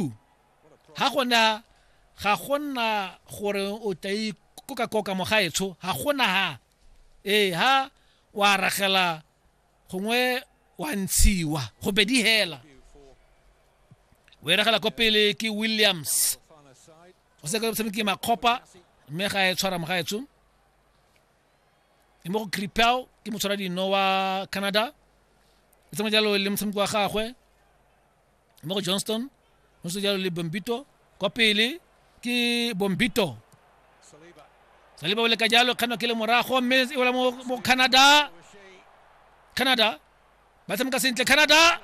Tlou, ga gona ga gona gore o tla ikoka koka mogaetsho ga gona ha ee ha wa ragela gongwe wa ntshiwa go bedi hela o e ragela ko pele ke williams o se ka tshameki makgopa mme ga e tshwara mogaetsho e mo go cripel ke motshwara dino wa canada e tsamaya jalo le motshameki wa gagwe mo go johnston go se jalo le bombito kwa pele ke bombito saliba o leka jalo kganwa ke le morago mme e wela mo mo canada canada ba tshameka sentle canada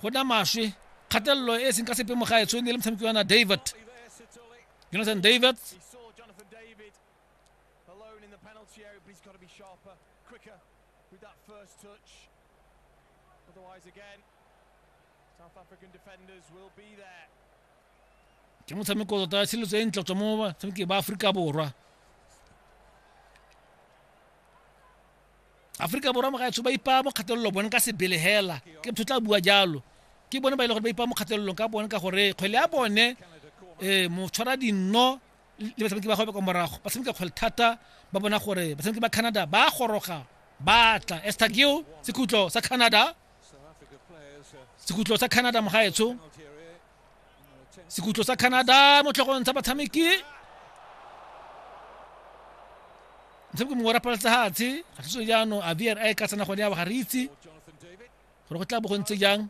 go na maswe kgatelelo e e seng ka sepe mo gaetsho ne le motshameki wa na david jonathan david Alone in the penalty area, but he's got to be sharper, quicker with that first touch. Otherwise, again, South African defenders will be there. ke motshameko tota ya tshiletso e ntle tswa mo batshameki ba aforika borwa aforika borwa mogaetsho ba ipaya mo kgatelelo bone ka sebele hela ke motho tla bua jalo ke bone ba e le gore ba ipaya mo kgatelelong ka bone ka gore kgwele ya bone um motshwara dinno le batshameki ba gagwe kwa morago ba tshameka kgwele thata ba bona gore batshameki ba canada ba goroga ba tla estagio sekhutlo sa canada sekhutlo sa canada mogaetsho sekhutlo sa canada mo tlhogong tsa batshameki motshameki mongwe wa rapaletsa hatshe ga thuso jaanong a vr a e ka tsena gone ya ga re itse gore go tla bo go ntse jang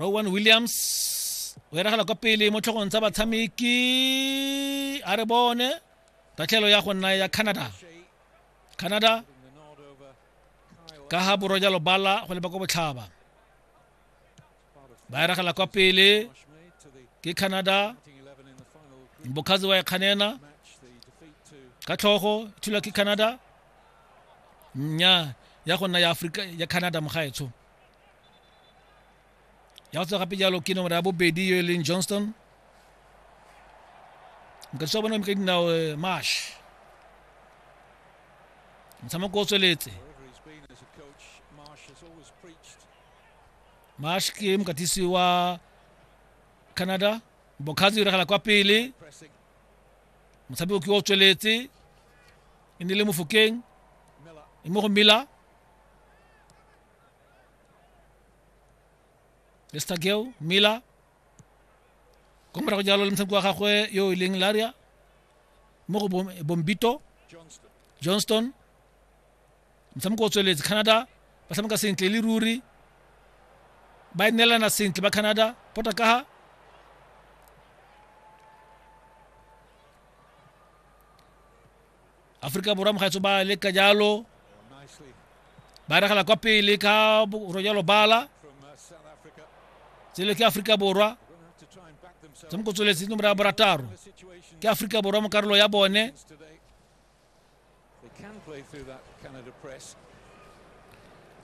rowan williams o eragela kwa pele mo tlhogong tsa batshameki a re bone tatlhelo ya go nna ya canada canada ka ga borwa jalo bala go leba kwa botlhaba ba eragela kwa pele ke canada mbokhazi wa ekganena ka tlhogo thulwa ke canada nya ya go nna ya afrika ya canada mogaetsho ya go tswa gape jalo ke nomoro ya bobedi yo e leng johnston mokatisa wa bone ka dinao eh, mash motshameko o tsweletse mash ke mokatisi wa canada bokgatsi o diragala kwa pele motshameko ke o tsweletse e ne le mofokeng e mo go mela lestageo miller ko morago jalo le motshameko wa gagwe yo e leng laria mo go bombito johnston motshameko o tsweletse canada ba tshameka sentle le ruri ba e neelana sentle ba canada pota kaga aforika borwa mogaetso ba leka jalo ba regela kwa pele ka rojalo bala tsele ke aforika borwa tse mo kotsweletseng nomoro ya borataro ke aforika borwa mo karolo ya bone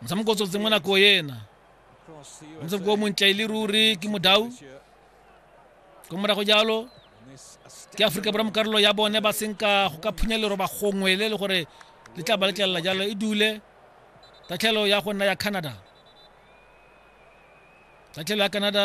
motshameko o tsotse mo nako ena motshameko o montle e le ruri ke modau ko morago jalo ke aforika borwa mokarolo ya bone ba senka go ka phunya leroba gongwe le le gore le tla ba letlelela jalo e dule tatlhelo ya go nna ya canada tatlhelo ya canada